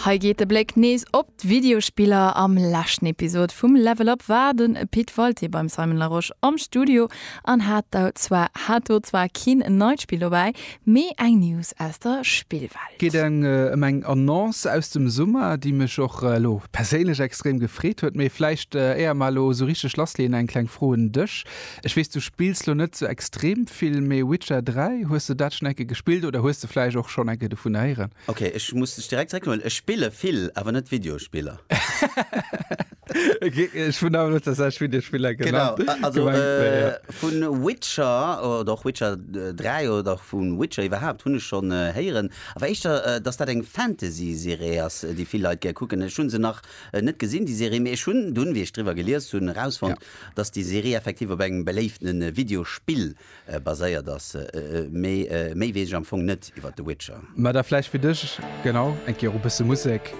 Hei geet de Bléck nees op d'Videospiller. Am leschten Episod vum Level Up war de Pit Walté beim Simon Larosche am Studio an hat do zwar hat do zwar keen neit Spill dobäi, mee eng News aus der Spillwelt. Geet ëm eng Annonce aus dem Summer, déi mech och elo perséinlech extrem gefreet huet. Mee vläicht éier mer elo esou richteg lassleeën, eng kleng Fro un dech, Ech weess du spills lo net sou extrem vill, mee Witcher 3, hues de dat schon enke gespillt oder hues de vläicht och schon enke dovun héieren? Ok, ech muss dech direkt zréckhuelen, ech spille vill, awer net Videospiller. Ech hunn awer net tatsächlech Videospiller genannt. Genau, also vu Witcher oder och Witcher 3 oder vu Witcher iwwerhaapt hunn ech schon héieren, awer éischter dass dat eng Fantasy-Serie ass, déi vill Leit gär kucken. Ech hu se nach net gesinn, déi Serie, mee ech hunn dunn, wéi ech driwwer gelies hunn, erausfonnt, Dass déi Serie effektiv op engem beléiften Videospill baséiert ass, mee méi weess ech am Fong net iwwert The Witcher. Mä da vläicht fir dech, genau, eng Kéier och e bësse Musek.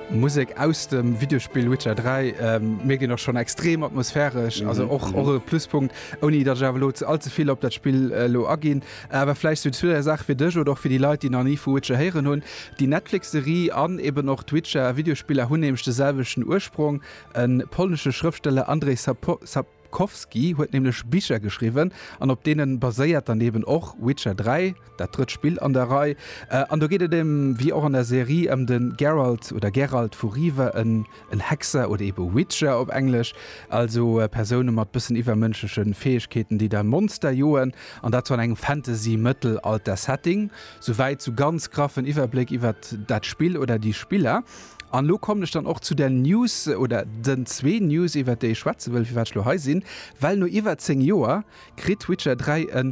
Musek aus dem Videospill Witcher 3 mierkt een och schonn, extrem atmosphäresch, also och e Pluspunkt, ouni datt ech awer elo all ze vill op dat Spill elo aginn. Awer vläicht sou zwee, dräi Saache fir dech oder och fir déi Leit, déi nach ni vu Witcher héieren hunn, Déi Netflix-Serie an eben och d'Witcher-Videospiller hunn nämlech de selwechten Ursprong, E polnesche Schrëftsteller Andrzej Sapkowski huet nämlech Bicher geschriwwen an op deene baséiert dann eben och Witcher 3, dat drëtt Spill an der Rei. An do geet et ëm, wéi och an der Serie, ëm de Geralt oder Geralt vu Riva, en Hexer oder ebe Witcher op Englesch, also Persoune mat bëssen iwwermënschleche Fäegkeeten, déi da Monster joen, an dat sou an engem Fantasy-Mëttelalter-Setting. Souwäit zu ganz graffen Iwwerbléck iwwert dat Spill oder déi Spiller. An elo kommen ech dann och zu der News oder den zwee News, iwwert déi ech schwätze wëll, firwat ech elo hei sinn. Well no iwwer 10 Joer kritt Witcher 3 e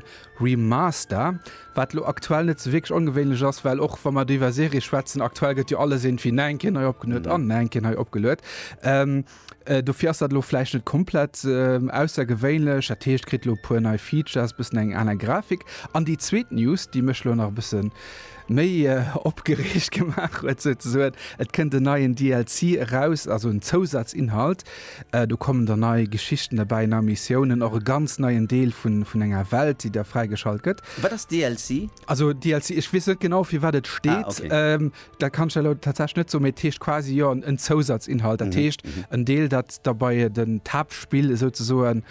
Remaster, wat elo aktuell net esou wierklech ongewéinlech ass, well och wa mer do iwwer Serie schwätzen, aktuell gëtt jo alles iergendwéi nach eng Kéier nei opgeluet an nach eng Kéier nei opgeluet. Dofir ass dat elo vläicht net komplett aussergewéinlech. Dat heescht, kritt elo e puer nei Features, bëssen eng aner Grafik. An déi zweet News, déi mech elo nach e bësse méi opgereegt gemaach huet souzesoen, et kënnt en neien DLC eraus, also en Zousazinhalt. Do kommen dann nei Geschichten derbäi, nei Missiounen, och e ganz neien Deel vun enger Welt, déi da fräigeschalt gëtt. Wat ass DLC? Also DLC, ech weess net genau, fir wat et steet. Dat kann ech der elo tatsächlech net soen, mee et heescht quasi jo en Zousatzinhalt. Dat heescht en Deel, dat da bei d'Haaptspill esouzesoen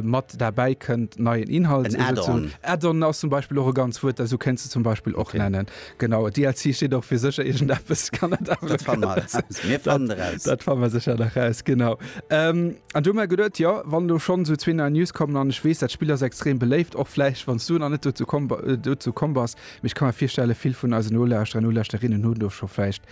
mat derbäi kënnt, neien Inhalt. En Add-on. Add-on ass zum Beispill och e ganz Wuert, dat esou kéints de zum Beispill och nennen. Genau. DLC steet och fir sécher iergendeppes. Dat fanne mer eraus. Mir fannen eraus. Dat fanne mer sécher nach eraus, genau. An du hu mer geduet, jo, wann elo schonn esou zwee nei News kommen, an ech weess, dat Spill ass extrem beléift, och vläicht wann s du nach net dozou komm bass, Mee ech ka mer virstellen, vill vun eisen Nolauschterer an Nolauschterinnen hunn do scho vläicht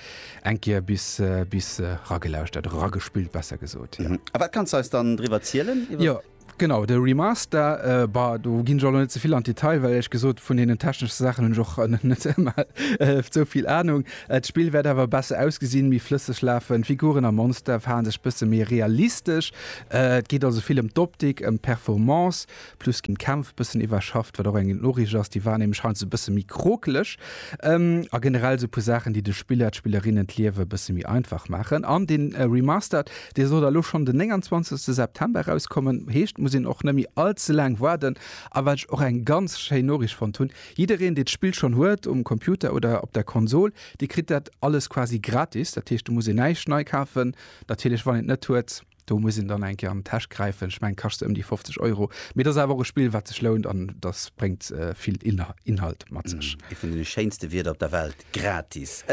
eng Kéier bis, bis ragelauschtert, oder ragespillt besser gesot, jo. A wat kanns de eis dann driwwer zielen? Jo, genau, de Remaster, bah, do ginn ech och elo net ze vill an d'Detail, well éierlech gesot vun deenen techneschen Saachen hunn ech och net ëmmer esou vill Anung. D'Spill wäert awer besser ausgesinn, méi flësseg lafen, d'Figuren a Monster verhale sech bësse méi realistesch. Et geet also vill ëm d'Optik, ëm d'Performance. Plus ginn d'Kämpf bëssen iwwerschafft, wat och eng gutt Noriicht ass. Déi waren nämlech heiansdo e bësse méi krokeleg. A generell esou e puer Saachen, déi de Spiller, d'Spillerinnen d'Liewe e bësse méi einfach maachen. An dee Remastered, dee soll da lo schonn den 29 September erauskommen. Heescht, et muss een och net méi all ze laang waarden. A wat ech och eng ganz schéin Noriicht fonnt hunn, Jiddereen, dee d'Spill schonn huet, um Computer oder op der Konsol, dee kritt dat alles quasi gratis. Dat heescht, do muss een näischt nei kafen. Natierlech, wann een et net huet. Do muss een dann eng Kéier an d'Täsch gräifen. Ech mengen, kascht se ëm déi 50 Euro. Mee et ass awer och e Spill, wat sech lount an dat bréngt vill Inhalt mat sech. Ee vun de schéinste Wierder op der Welt, gratis!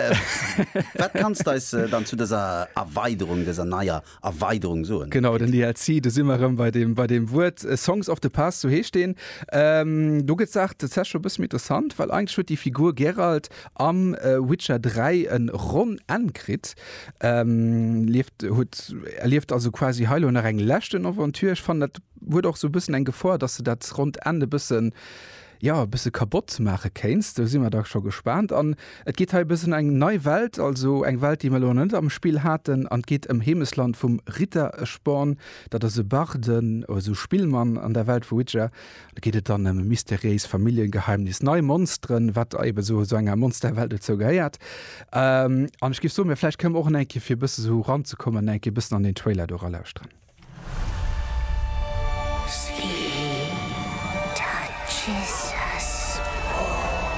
Wat kanns de eis dann zu dëser Erweiderung, dëser neier Erweiderung soen? Genau, den DLC, do si mer erëm bei deem Wuert. Songs of the Past, sou heescht deen. Do gëtt d'Saach tatsächlech scho e bësse méi interessant, well eigentlech huet déi Figur Geralt am Witcher 3 en ronn Enn kritt, lieft huet erlieft also quasi hei lo nach eng leschten Aventure. Ech fannen dat huet och sou bëssen eng Gefor dass de dat ronnt Enn e bëssen jo e bësse kabott maache kéints. Do si mer da scho gespaant an et geet hei e bëssen eng nei Welt, also eng Welt déi mer lo nach net am Spill haten an et geet ëm Heemesland vum Ritteresporn. Dat ass e Barde, also Spillmann an der Welt vu Witcher Da geet et dann ëm e mysteriéist Familljengeheimnis, nei Monsteren, wat eben esou esou enger Monsterwelt dozou gehéiert. Ähm, an ech géif soen, mir vläicht kënnen mer och en eng Kéier, fir e bësse esou ranzekommen, en eng Kéier e bëssen an den Trailer do eralauschteren.